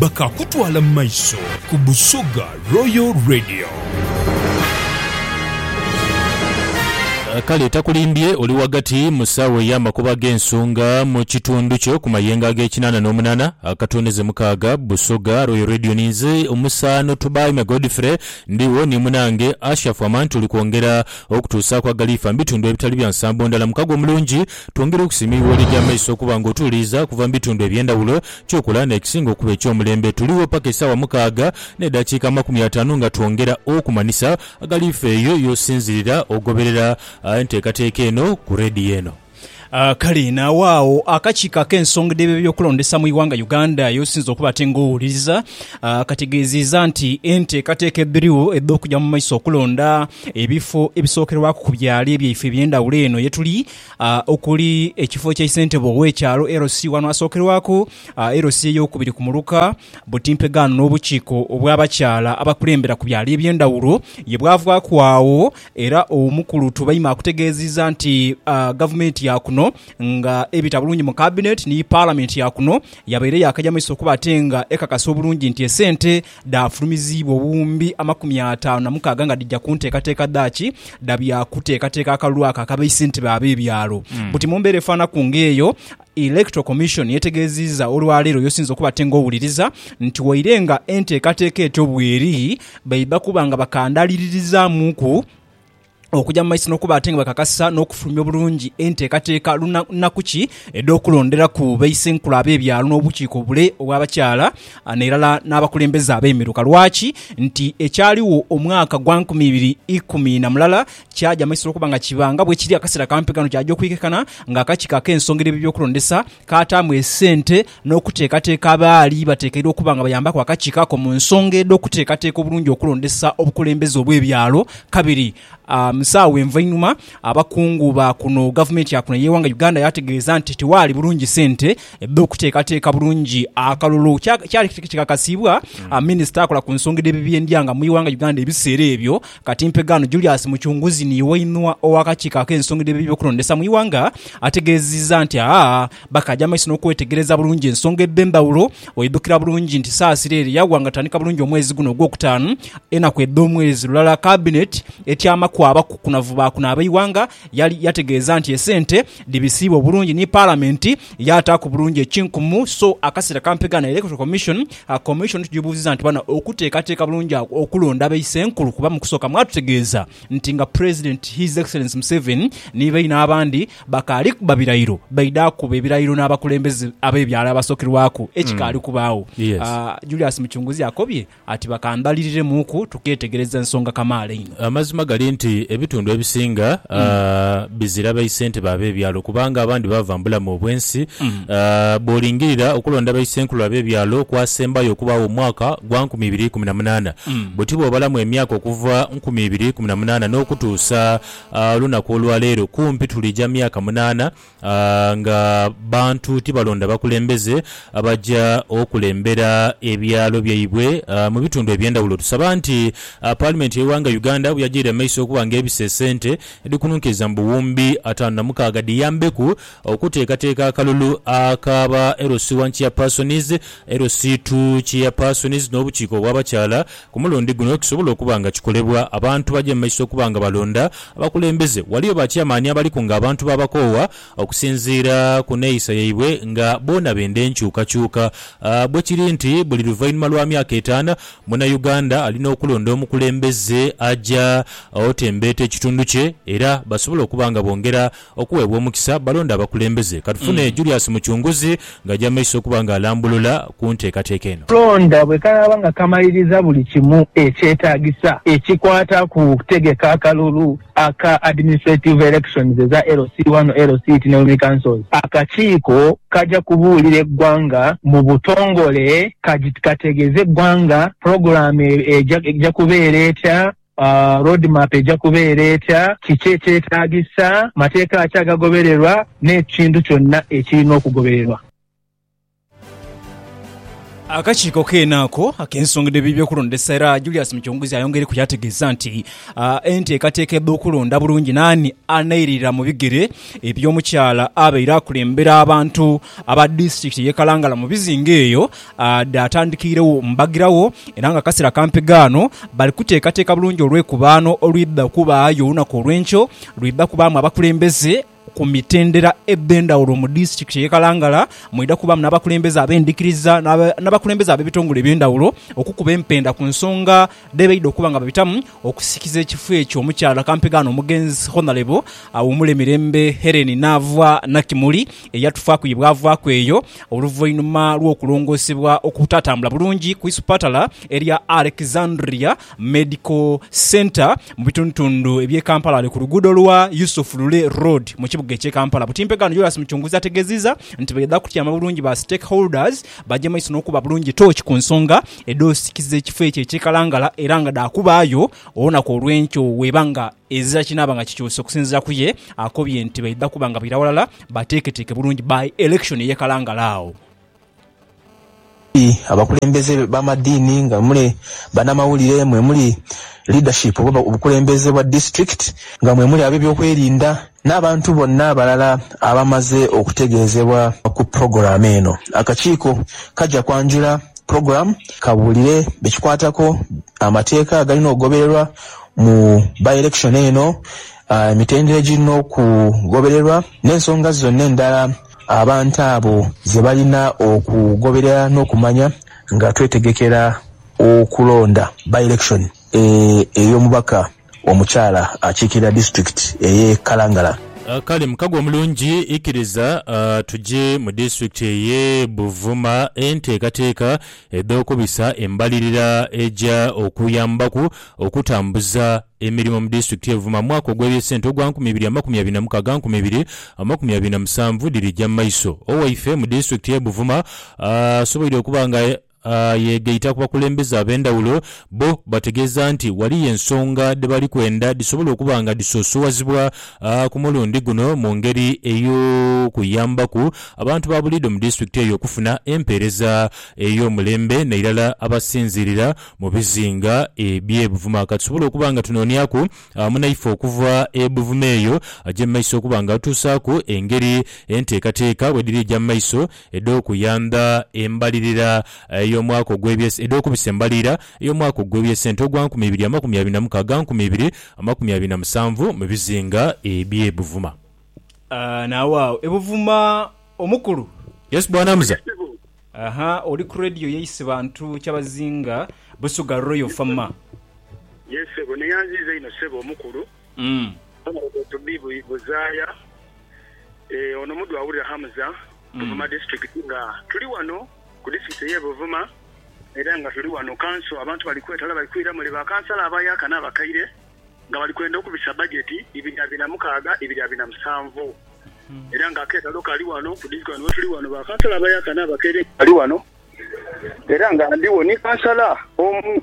bakaakutwala mu maiso ku Busoga Royal Radio. Kale takulimbye oli ghagati mu saawa ey'amakubo ag'ensonga mu kitundu kyo ku mayengo ag'ekinaana n'omunaana akatooneze mukaaga. Busoga Royal Radio ni nze omusaano Tubaime Godfrey, ndigho ni munaange Ashafu Aman tuli kwongera okutuusaaku agaliifa mu bitundu ebitali bya nsambo ndala. Mukago omulungi, twongera okusiima eigho liri amaiso okuba nga otuwuliriza okuva mu bitundu eby'endhawulo Kyokola n'ekisinga okuba eky'omulembe, tuligho paka esaawa mukaaga n'edakiika amakumi ataanu nga twongera okumanhisa agali ffe eyo y'osinzirira ogoberera enteekateeka eno ku rediyo eno. Kale naagho agho akakiiko ak'ensonga dh'ebyokulondesa mu ighanga Uganda y'osinze okuba ate nga owuliriza kategeeziiza nti enteekateeka edhirigho edh'okuja mu maiso okulonda ebifo ebisookerwaku ku byaalo byaife eby'endhawulo eno yetuli okuli ekifo kya isentebe ow'ekyalo LC. Ghano asookerwaku LC eyookubiri ku muluka Butimpegano n'obukiiko obw'abakyala abakulembera ku byalo eby'endhawulo ye bwavaaku agho era omukulu Tubaime akutegeezizza nti Gavumenti ya kuno nga ebita bulungi mu Kabineti ni Palamenti ya kuno yabaire yaakaja mu maiso kuba ate nga ekakasa obulungi nti esente Dhaafulumiziibwa obuwumbi amakumi ataanu na mukaaga nga dhija ku nteekateeka dhaaki dha bya kuteekateeka akalulu ako akabeise nti b'ab'ebyalo. Buti mu mbeera efaanaku ng'eyo, Electoral Commission yetegeezizza olwaleero y'osinze okuba ate ng'owuliriza nti waire nga enteekateeka etyo bw'eri, baidha kuba nga bakandaaliririzaamuku. okuja mu maiso n'okuba ate nga bakakasa n'okufulumya obulungi enteekateeka lunaku ki edh'okulonderaku baisenkulu ab'ebyalo n'obukiiko obule obw'abakyala n'erala n'abakulembeze ab'emiruka. Lwaki nti ekyaligho omwaka gwa nkumi ibiri ikumi na mulala kyaja mu maiso lw'okuba nga kiba nga bwekiri akaseera kampi kano kyaja okwikekana ng'akakiiko ak'ensonga edh'ebyokulondesa kaataamu esente n'okuteekateeka abaali bateekeibwa okuba nga bayambaku akakiiko ako mu nsonga edh'okuteekateeka obulungi okulondesa obukulembeze obw'ebyalo kabiri mu saagho envainhuma abakungu ba kuno gavumenti ya kuno ey'eighanga Uganda yaategeeza nti tiwaali bulungi sente dh'okuteekateeka bulungi akalulu. Kyali kikakasiibwa minisita akola ku nsonga edh'ebibyendya nga mu ighanga Uganda ebiseera ebyo. Kati mpe ghano Julius Mucunguzi ni Iwainua ow'akakiiko ak'ensonga edh'ebyokulondesa mu ighanga ategeezizza nti aah bakaja amaiso n'okwetegereza bulungi ensonga edh'endhawulo. Oidhukira bulungi nti Saasira ere yaghwa nga tandika bulungi omwezi guno ogwokutaanu, enaku edh'omwezi lulala kabineti etyamaku abakukunavu ba kuno ab'eighanga, yali yategeeza nti esente Dhibisiibwa obulungi ni Palamenti yaataaku bulungi ekinkumu so akasera kampegha na Electoral Commission. Commission tugyibuuzizza nti bana okuteekateeka bulungi agho okulonda be Isenkulu kuba mu kusooka mwatutegeeza nti nga President His Excellency Museveni ni baine abandi bakaali kuba birayiro baidha akuba ebirayiro n'abakulembeze ab'ebyalo abasookerwaku ekikaali kubaagho. Julius Mucunguzi akobye Ati bakambaliriremu-ku tukeetegereza nsonga kamaala einho. Amazima gali nti ebitundu ebisinga bizira baisentebe ab'ebyalo kubanga abandi baava mu bulamu obw'ensi. Bw'olingirira okulonda baisenkulu ab'ebyalo kwasembayo okubaagho mu mwaka gwa nkumi ibiri ikumi na munaana. Buti bw'obalamu emyaka okuva nkumi ibiri ikumi na munaana n'okutuusa olunaku olwa leero kumpi tulija myaka munaana Nga bantu tibalonda bakulembeze abaja okulembera ebyalo byaibwe mu bitundu eby'endhawulo. Tusaba nti Paalimenti y'eighanga Uganda bweyagyaire mu maiso okuba nga ebisa esente edhikununkiriza mu buwumbi ataanu na mukaaga dhiyambeku okuteekateeka akalulu aka ba LC1 Chairpersons, LC2 Chairpersons n'obukiiko obw'abakyala Ku mulundi guno kisobola okuba nga kikolebwa abantu baje mu maiso okuba nga balonda abakulembeze. Ghaliyo ba chairman abaliku nga abantu baabakoowa okusinziira ku neeyisa yaibwe nga boona benda enkyukakyuka. Bwe kiri nti buli luvainhuma lwa myaka etaana, Munauganda alina okulonda omukulembeze aja otembeeta ekitundu kye era basobola okuba nga bongera Okuweebwa omukisa balonde abakulembeze. Katufune Julius Mucunguzi ng'aja maiso okuba nga alambulula ku nteekateeka eno. Okulonda bwe kanaaba nga kamaliriza buli kimu ekyetaagisa ekikwata ku kutegeka akalulu aka Administrative Elections eza LC wano LCT ne Women Councils, akakiiko kaja kubuulira eggwanga mu butongole kategeeze eggwanga pulogulaamu eja kubeera etya Road map eja kubeera etya? Kiki ekyetaagisa? Mateeka ki agagobererwa? N'ekintu kyonna ekirina okugobererwa. Akakiiko keene ako ak'ensonga dh'eby'okulondesa era Julius Muchunguzi ayongeireku yaategeeza nti enteekateeka edh'okulonda bulungi n'ani anairira mu bigere eby'omukyala abaire akulembera abantu aba disitulikiti y'e Kalangala mu bizinga eyo Dhaatandikiiregho mbagiragho, era ng'akaseera kampi ghaano bali kuteekateeka bulungi olwekubaano olwidha okubaagho olunaku olw'enkyo. Lwidha kubaamu abakulembeze ku mitendera edh'endhaghulo mu disitulikiti ey'e Kalangala. Mwidha kubaamu n'abakulembeze ab'endhikiriza n'abakulembeze ab'ebitongole eby'endhaghulo okukuba empenda ku nsonga dhe baidha okuba nga babitamu okusikiza ekifo ekyo omukyala kampegaano omugenzi Honalebo Awumule Mirembe Hellen Naavwa Nakimuli eyatufaaku ye bwavaaku eyo oluvainhuma lw'okulongoosebwa okutatambula bulungi ku isupatala erya Alexandria Medical Centre mu bitundutundu eby'e Kampala ali ku luguudo lwa Yusuf Lule Road mu kibuga eky'e Kampala Butimpegaano Jolas Mucunguzi ategeziza nti baidha kutyama bulungi ba stakeholders bagye maiso n'okuba bulungi tooki ku nsonga edh'osikiza ekifo ekyo ekyekalangala era nga dha kubaayo olunaku olw'enkyo weeba nga ezira kinaaba nga kikyuse okusinziira ku ye akobye nti baidha kuba nga baira ghalala bateeketeeke bulungi by election eye kalangala agho. Muli abakulembeze b'amadiini, nga muli banamawulire, mwe muli leadership oba obukulembeze bwa district, nga mwe muli ab'ebyokwerinda, N'abantu bonna abalala abamaze okutegeezebwa ku pulogulaamu eno, akakiiko kaja kwanjula pulogulaamu kabuulire be kikwatako amateeka agalina okugobererwa mu by-election eno, emitendera egirina okugobererwa n'ensonga zonna endala abantu abo ze balina okugoberera n'okumanya nga twetegekera okulonda by-election ey'omubaka Omukyala akiikirira disitulikiti ey'e Kalangala. Kale mukago omulungi, ikiriza tuje mu disitulikiti ey'e Buvuma. Enteekateeka edh'okubisa embalirira eja okuyambaku okutambuza emirimo mu disitulikiti y'e Buvuma mu mwaka ogw'ebyesente ogwa nkumi ibiri amakumi abiri na mukaaga nkumi ibiri amakumi abiri na musanvu dhirija mu maiso. Owaife mu disitulikiti y'e Buvuma asoboire okuba nga Yeegaita ku bakulembeze ab'endhawulo, bo bategeeza nti ghaliyo ensonga dhe bali kwenda dhisobole okuba nga dhisoosowazibwa ku mulundi guno mu ngeri ey'okuyambaku abantu ba buliidho mu disitulikiti eyo okufuna empeereza ey'omulembe nairala abasinziirira mu bizinga eby'e Buvuma. Ka tusobole okuba nga tunooniaku munaife okuva e Buvuma eyo aje mu maiso okuba nga atutuusaaku engeri enteekateeka bwedhiri eja mu maiso edh'okuyandha embalirira y'omwaka ogw'ebye edh'okubisa embalirira y'omwaka ogw'ebyesente ogwa nkumi ibiri amakumi abiri na mukaaga nkumi ibiri amakumi abiri na musanvu mu bizinga eby'e Buvuma. Nawe agho e Buvuma omukulu. Yes bwana muza. Aha oli ku radio ye Isibantu Kyabazinga Busuga Royal Fama. Yes sebo neyanziiza inho sebo omukulu. Umm. Aye bwe to be buzaaya eeh ono muddu awulira Hamza Buvuma district nga tuli wano ku district eye Buvuma era nga tuli wano kanso abantu bali kwetala bali kwira mule ba kansala abayaka na bakaire nga bali kwenda okubisa budget ibiri abiri na mukaaga ibiri abiri na musanvu era nga aketalo kali wano ku district wano wetuli wano ba kansala abayaka na bakaire nga bali wano era nga ndiwo ni kansala omu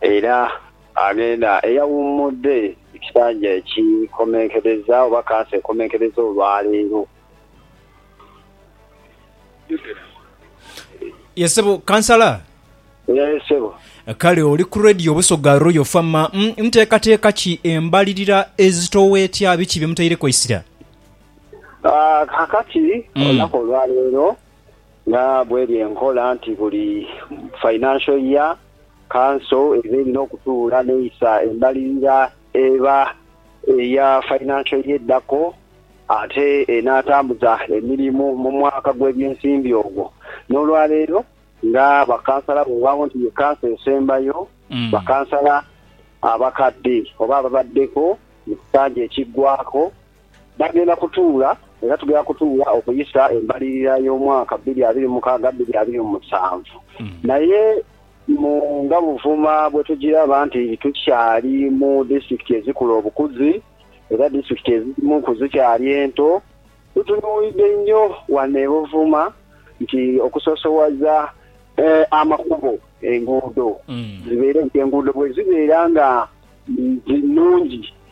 Era aghenda eyawummudde ekisanja ekikomenkereza oba kansa ekomenkereza olwaleero. Ye sebo kansala? Ye sebo. Kale oli ku Radio Busoga Royal Fama. Nteekateeka ki embalirira ezitowa etya? Biki bye mutaireku eisira? Kakati olunaku olwaleero nga bweri enkola nti buli financial year, Kanso eba erina okutuula n'eisa embalirira eba eya fainanso eye edhako ate enaatambuza emirimu mu mwaka gw'ebyensimbi ogwo. N'olwaleero nga bakansala weewaawo nti ye kanso esembayo, bakansala abakadde oba ababaddeko mu kisanja ekiggwaako, Bagenda kutuula era tugenda kutuula okuyisa embalirira y'omwaka bbiri abiri mu mukaaga bbiri abiri mu musanvu. Naye mu nga Buvuma bwe tugiraba nti tukyali mu disitulikiti ezikula obukuzi era disitulikiti edhimu ku zikyali ento, tutunuulidde nnyo wano e Buvuma nti okusoosowaza amakubo, enguudo zibeere nti enguudo bwe zibeera nga nnungi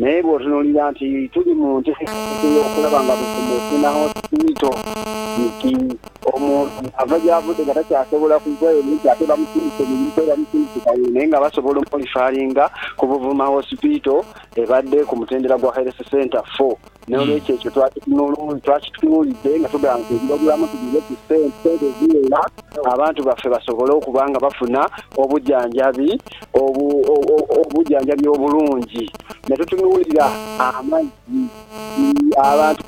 Naye bw'otunuulira nti tuli mu nteekateeka ey'okulaba nga buli kimu kifuna hoosipito, nti omuntu ava gy'avudde nga takyasobola kuva eno nti ate bamusindike Buikwe, bamusindike Kawolo naye nga basobola omulifaalinga ku Buvuma Hospital ebadde ku mutendera gwa Health Centre iv. N'olwekyo ekyo twakitunuulidde nga tugamba nti eby'obulamu tubiwe ku sente, sente eziwera abantu baffe basobole okuba nga bafuna obujanjabi obujanjabi obulungi. Ne tutunuulira amazzi, abantu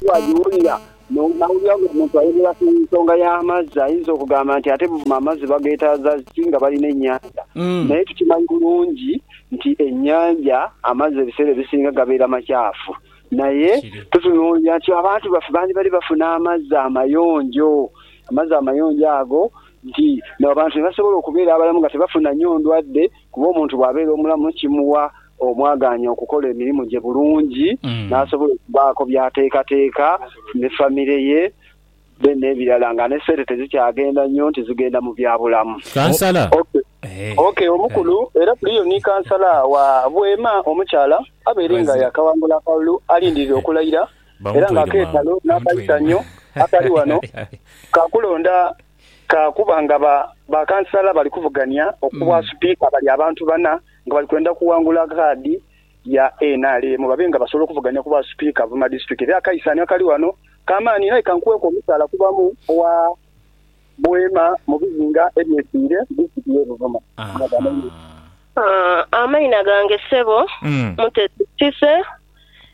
baagiwulira. N'owulira ng'omuntu ayogera ku nsonga y'amazzi, ayinza okugamba nti, Ate buvuma amazzi bageetaaza ki nga balina ennyanja? Naye tukimanyi bulungi nti ennyanja amazzi ebiseera ebisinga gabeera makyafu. Naye tutunuulira nti abantu baffe bandibadde bafuna amazzi amayonjo. Amazzi amayonjo ago nti n'abantu ne basobola okubeera abalamu nga tebafunanyo ndwadde kuba omuntu bw'abeera omulamu kimuwa omwagaanya okukola emirimu gye bulungi n'asobola okubaako by'ateekateeka ne famire ye then n'ebirala nga ne sente tezikyagenda nnyo nti zigenda mu byabulamu. Kansala. OK omukulu era kuliyo ni kansala wa Bweema omukyala abeere nga yaakawangula akalulu alindirire okulayira era nga akeetalo n'akayisannyo akali wano ka kulonda ka kuba nga ba kansala bali kuvugania okubwa Sipiika bali abantu bana nga bali kwenda kuwangula kaadi ya nrm babe nga basobola okuvuganya ku bwa sipiika abamadistrict era akaisaani akali ghano kamaani inho aye kankuweeku omusaala kubamu owa Bweema mu bizinga ebyesiire mu disitulikiti ye Buvuma nga gha mainhina. Amaina gange ssebo Mutesi Cissy,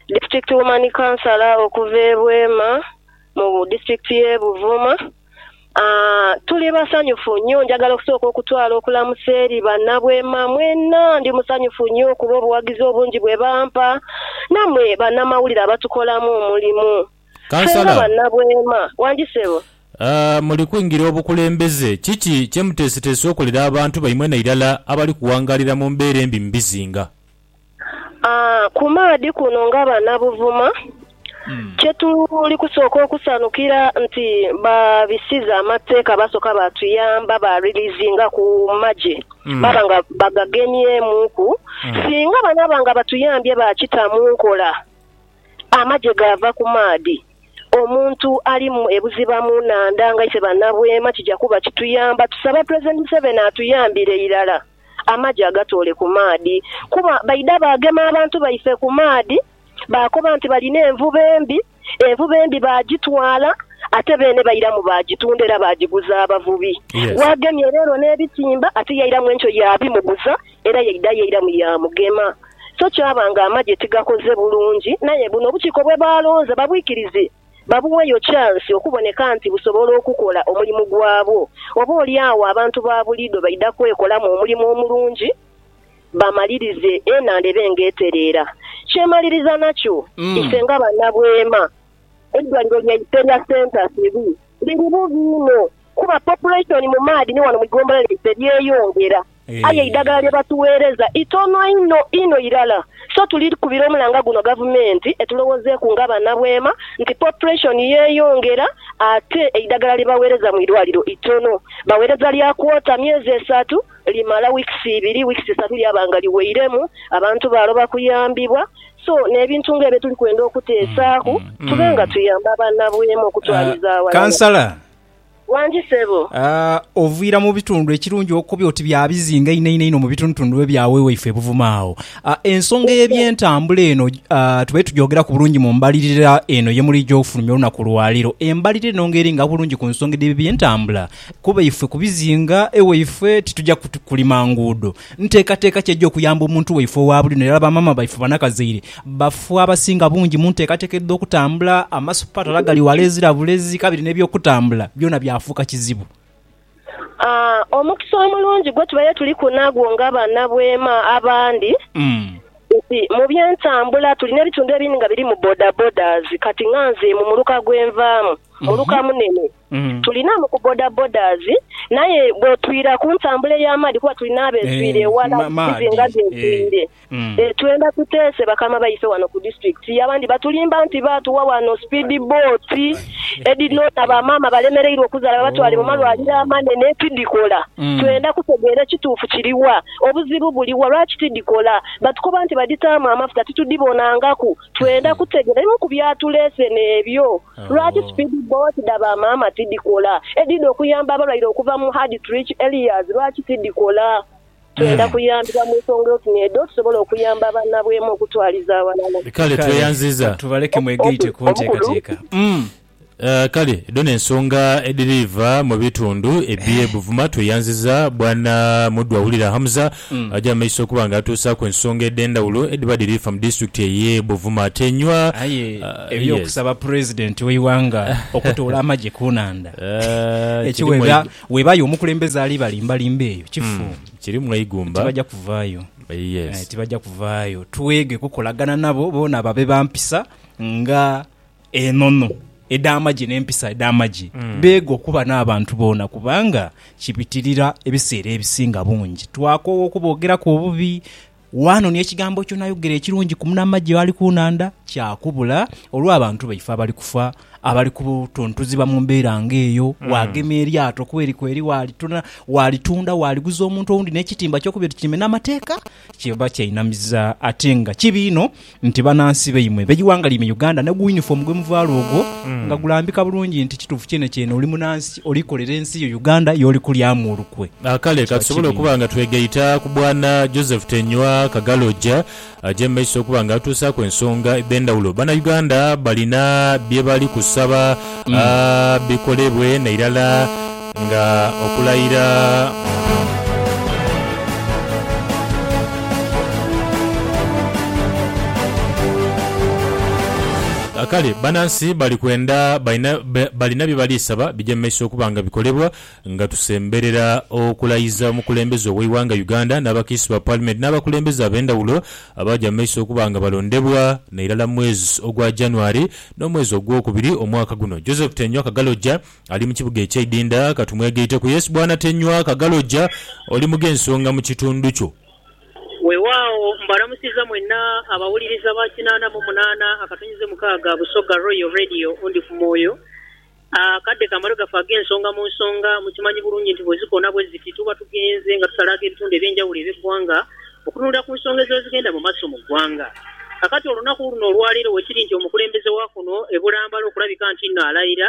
District Woman Councillor okuva e Bweema mu disitulikiti ye Buvuma. Aah, tuli basanyufu nyo. Njagala okusooka okutwala okulamusa eri banabweema mwena. Ndi musanyufu nyo okuba obuwagizi obungi bwe bampa, namwe banamawulire abatukolamu omulimu. Ffe nga Kansala. banabweema. Wangi sebo. Aah, muli kwingira obukulembeze. Kiki kye muteeseteese okolera abantu baimwe nairala abali kuwangaalira mu mbeera embi mu bizinga? Ku maadhi kuno nga banabuvuma, kye tuli kusooka okusanhukira nti baabisiza amateeka baasoka baatuyamba baariliizingaku magye baaba nga bagagemyemuuku. Singa banaaba nga batuyambye baakita mu nkola amagye gaava ku maadhi, omuntu ali e buziba mu nhandha nga ife Bannabweema kija kuba kituyamba. Tusaba Pulezidenti Museveni atuyambire irala. Amagi agatoole ku maadhi, kuba baidha baagema abantu baife ku maadhi, baakoba nti balina envuba embi. Envuba embi baagitwala, ate beene bairamu baagitunda era baagiguza abavubi. Waagemye leero n'ebitimba, ate yairamu enkyo yaabimuguza, era yaidha yairamu yaamugema. So kyaba ng'amagye tigakoze bulungi. Naye buno obukiiko bwe baalonze babwikirize. babuweeyo chansi okuboneka nti busobola okukola omulimu gwabwo. Oboolyawo abantu ba buliidho baidha kwekolamu omulimu omulungi bamalirize enhandha ebe ng'etereera. Kyemaliriza nakyo, ife nga banabweema, eidwaliro lyaife erya Center Sirui liri bubi inho kuba population mu maadhi ni wano mu igombolola lyaife lyeyongera. Aye eidagala lye batugheereza itono inho inho irala. So tuli kubira omulanga guno Gavumenti etulowoozeeku nga banabweema nti population yeeyongera ate eidagala lye bagheereza mu irwaliro itono. Bagheereza lya kwota myezi esatu, limala weeks ibiri, weeks isatu lyaba nga liweiremu, abantu baaloba kuyambibwa. So n'ebintu nga ebyo tuli kwenda okuteesaaku tube nga tuyamba banabweema okutwaliza aghalala. Kansala, Wangi sebo. Oviira mu bitundu ekirungi okobi oti bya bizinga einho einho einho mu bitundutundu ebya we waife e Buvuma agho. Ensonga ey'ebyentambula eno tube tugyogeraku bulungi mu mbalirira eno ye muli gy'ofulumya olunaku lwa leero. Embalirira eno nga eringa bulungi ku nsonga edh'ebyentambula kuba ife ku bizinga e waife titugya kulima nguudo. Nteekateeka ki egy'okuyamba omuntu waife owa buli luno irala bamaama baife banakazaire bafu abasinga bungi mu nteekateeka edh'okutambula? Amasupatala gali wala ezira bulezi kabiri n'eby'okutambula byona byafuuka kizibu. A Omukisa omulungi gwe tubaire tuliku nagwo nga banabweema abandi nti mu by'entambula tulina ebitundu ebindi nga birimu bodabodas kati nga nze mu muluka gwe nvaamu, muluka munene, Tuli naamu ku bodabodas naye bwetwira ku ntambula ey'amaadhi kuba tuli n'abetwire eghala bizinga byetwire, twenda tuteese bakama baife wano ku disitulikiti. Abandi batulimba nti baatuwa wano sipiidi booti edhinoona ba maama abalemereirwa okuzaala babatwale mu malwaliro amanene tidhikola. Twenda kutegeera ekituufu kiri wa, obuzibu buli wa lwaki tidhikola. Batukoba nti badhitaamu amafuta titudhibonangaku. Twenda kutegera ebimu ku byatuleseni ebyo. Lwaki sipiidi bbooti dha bamaama tidhikola? Edhidha okuyamba abalwaire okuva mu hard to reach areas lwaki tidhikola? Twenda kuyambibwa mu nsonga oti n'edho tusobole okuyamba bannabwema okutwaliza aghalala. Kale tweyanziza. Katubaleke mwegaite ku nteekateeka. Kale dhona ensonga edhiriiva mu bitundu eby'e Buvuma. Tweyanziza bwana Mudhwa Wulira Hamza aja mu maiso okuba nga atuusaaku ensonga edh'endhawulo edhiba dhiriifa mu disitulikiti ey'e Buvuma. Ate nywa. Aye eby'okusaba Pulezidenti w'eighanga okutoola amagye ku nhandha, ekyo webaayo omukulembeze ali balimbalimba eyo kifu. Tibaja kuvaayo. Tibaja kuvaayo. Twege kukolagana nabo boona babe ba mpisa nga. Enono edh'amagye n'empisa edh'amagye beega okuba n'abantu boona kubanga kibitirira ebiseera ebisinga bungi twakoowa okuboogeraku obubi. Wano ni ekigambo ky'onayogera ekirungi ku munamagye ali ku nhandha kyakubula olw'abantu baife abali kufa, abali kutuntuziibwa mu mbeera ng'eyo. Waagema eryato kweri kweri waalitunda, waaliguza omuntu owundi n'ekitimba ky'okuba ekitimbe n'amateeka. Kiba kyainamiza ate nga kibi inho nti banansi baimwe b'eighanga lyaimwe Uganda ni guyunifoomu gwe muvaala ogwo nga gulambika bulungi nti kituufu kyenekyene oli munansi oli kolera ensi yo Uganda y'oli kulyamu olukwe. Kale ka tusobole okuba nga twegaita ku Bwana Joseph Tenywa Kagalogya aje mu maiso okuba nga atuusaaku ensonga edh'endhawulo. Banauganda balina bye bali kusaba bikolebwe nairala. Nga okulayira. Kale banansi bali kwenda, balina bye bali saba bije mu maiso okuba nga bikolebwa nga tusemberera okulayiza omukulembeze ow'eighanga Uganda n'abakiisi ba Paalimenti n'abakulembeze ab'endhawulo abaaja mu maiso okuba nga balondebwa nairala mu mwezi ogwa January n'omwezi ogwokubiri omwaka guno. Joseph Tenywa Kagaloja. Ali mu kibuga ekyeidindha, ka tumwegaiteku. Yesu bw'anatenywa akagaloja, oli mu gh'ensonga mu kitundu kyo. Weewaawo, mbalamusiza mwenna abawuliriza ba kinaana mu munaana akatonyize mukaaga Busoga Royal Radio Ndi ku Mwoyo. Akadde kamale gafa agh'ensonga mu nsonga. Mukimanyi bulungi nti bwe zikoona bwe ziti tuba tughenze nga tusalaagho ebitundu eby'enjawulo eby'eggwanga okutunulira ku nsonga eziba zigenda mu maaso mu ggwanga. Kakati olunaku luno olwaleero we kiri nti omukulembeze wa kuno e Bulambala okulabika ntinno alaira,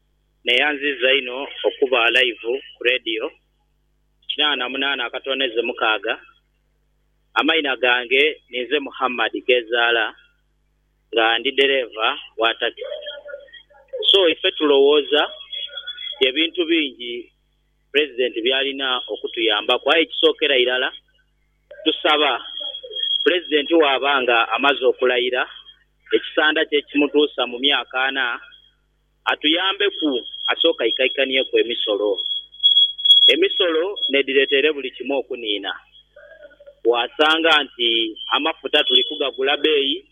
Neyanziza inho okuba alaivu ku leediyo kinana na munana akatooneze mukaaga. Amaina gange ninze Muhammad Ghezaala nga ndi dereeva wa takisi. So ife tulowooza ye bintu bingi Pulezidenti byalina okutuyambaku aye ekisookera irala tusaba Pulezidenti bwaba nga amaze okulayira ekisanda kye ekimutuusa mu myaka ana atuyambeku asooke aikaikanhieku emisolo. Emisolo n'edhireeta ere buli kimu okuniina. Bwasanga nti amafuta tuli kugagula beeyi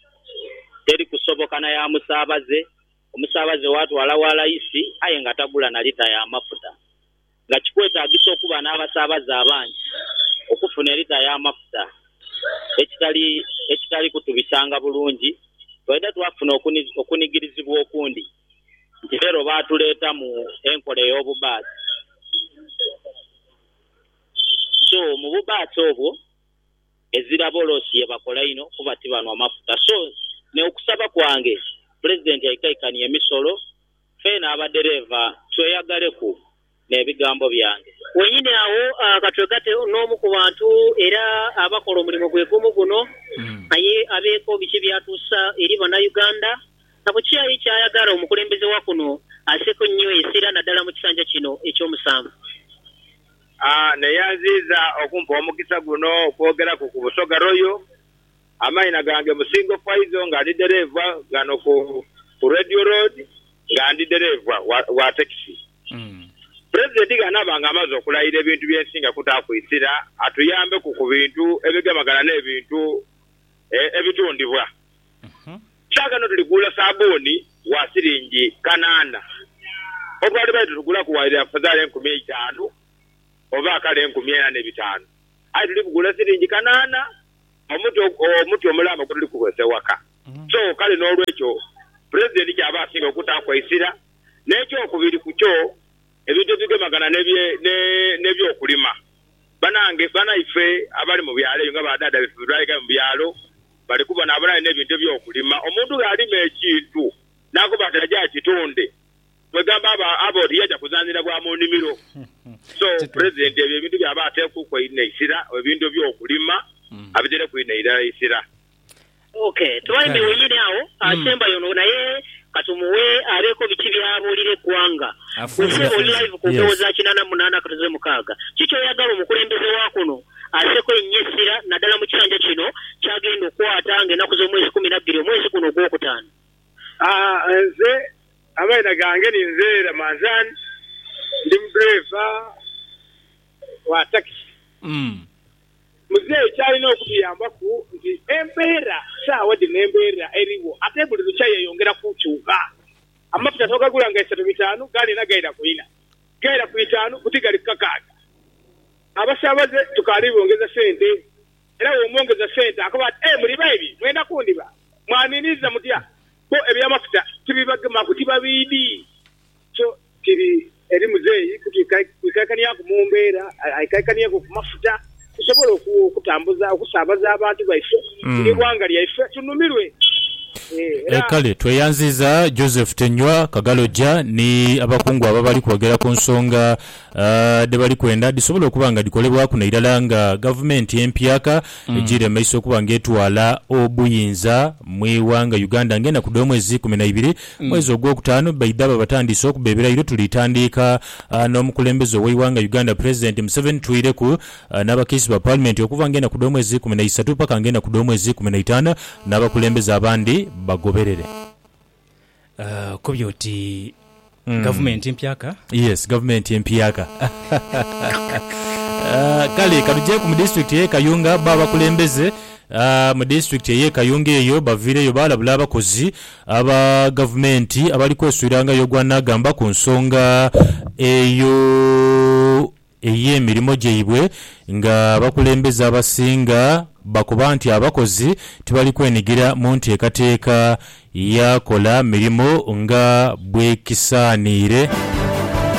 teri kusoboka na ya musaabaze, omusaabaze waatwala wa layisi aye nga tagula na lita ya mafuta. nga kikwetaagisa okuba n'abasaabaze abangi okufuna elita y'amafuta ekitali ekitali kutubisanga bulungi. Twaidha twafuna okunigirizibwa okundi nti leero baatuleetamu enkola ey'obubaasi. So, mu bubaasi obwo ezira bolosi ye bakola inho kuba tibanhwa mafuta. So, me okusaba kwange Pulezidenti aikaikanie emisolo. Feena abadereeva tweyagaleku n'ebigambo byange. Wennyini agho ka twegate n'omu ku bantu era abakola omulimo gwe gumu guno aye abeeko biki by'atuusa eri Bannayuganda na ku ki aye ky'ayagala omukulembeze wa kuno asseeko ennyo esira naddala mu kisanja kino eky'omusanvu. Neeyanziiza okumpa omukisa guno okwogeraku ku Busoga Royal. Amaina gange Musingo Faizo nga ndi dereeva ghano ku ku Radio Road nga ndi dereeva wa tekisi. Pulezidenti ghanaba nga amaze okulayira ebintu bye nsinga kutaaku isira atuyambeku ku bintu ebigemagana n'ebintu ebitundibwa. Saagha eno tuli kugula sabuuni wa siringi kanaana obwali baidhi tugulaku waire afadhali enkumi eitaanu oba kale enkumi ena n'ebitaanu aye tuli kugula siringi kanaana. omuti omuti omulaama ogutali kukozesa ewaka. So kale n'olwekyo Pulezidenti ky'aba asinga okutaaku eisira. N'ekyokubiri ku kyo, ebintu ebigemagana n'eby'okulima. Banange, banaife abali mu byalo eyo nga ba dhaadha baife bwe baayigayo mu byalo, bali kubonabona aye n'ebintu eby'okulima. Omuntu gh'alima ekintu n'akoba ati aje akitunde. kwegamba aba aba oti yaja kuzanhira bwa mu nimiro so president ebyo ebintu byaba atekuku einho eisira ebintu ebyo kulima abitereku inho eilara eisira. Ok Twine wenyini agho asembayo ono naye katumuwe abeko biki byabulira egwanga gwe sebo oli live ku mpewo za kinana munana katuze mukaga ki kyoyagala omukulembeze wakuno aseko enyo esira nadala mukisanja kino kyagenda okwata nga enaku zomwezi kumi nabbiri omwezi guno ogwokutano. Aah nze Amaina gange ni nze Ramazan ndi mudriver wa takisi. Muzeeyi kyalina okutuyambaku nti embeera sawa dhino embeera erigho ate buli lukya yeyongera kukyuka. Amafuta twagagula nga isato bitaanu gali ena gaira ku ina, gaira ku itaanu buti gali ku kakaaga. Abasabaze tukaali bongeza sente. era bw'omwongeza sente akoba ati, Ee, muli baibi, mwenda kundhiba? Mwaniiniriza mutya? Bbo eby'amafuta tibibagemaku, tibabiidi. Kyo kiri eri muzeeyi kwikaikanieku mu mbeera, aikaikanieku ku mafuta tusobole okutambuza, okusaabaza abantu baife n'eighanga lyaife tunumirwe. Era. Kale tweyanziiza Joseph Tenywa Kagaloja ni abakungu abo abali kwogera ku nsonga dhe bali kwenda dhisobole okuba nga dhikolebwaku nairala nga gavumenti empyaka ejiire mu maiso okuba nga etwala obuyinza mu ighanga Uganda nga enaku dh'omwezi ikumi na ibiri mwezi ogwokutaanu baidha babatandiise okuba ebirayiro tulitandiika n'omukulembeze ow'eighanga Uganda Pulezidenti Museveni twireku n'abakiisi ba Palimenti okuva nga enaku dh'omwezi ikumi na isatu paka nga enaku dh'omwezi ikumi na itaanu n'abakulembeze abandi bagoberere. Okobye oti gavumenti mpyaka? Yes, gavumenti empyaka. Kale katujeeku mu disitulikiti ey'e Kayunga. Bo abakulembeze mu disitulikiti ey'e Kayunga eyo baviireyo baalabula abakozi aba gavumenti abali kweswirangayo ogwanaagamba ku nsonga eyo. ey'emirimo gyaibwe nga abakulembeze abasinga bakoba nti abakozi tibali kwenigira mu nteekateeka ya kola mirimo nga bwekisaaniire.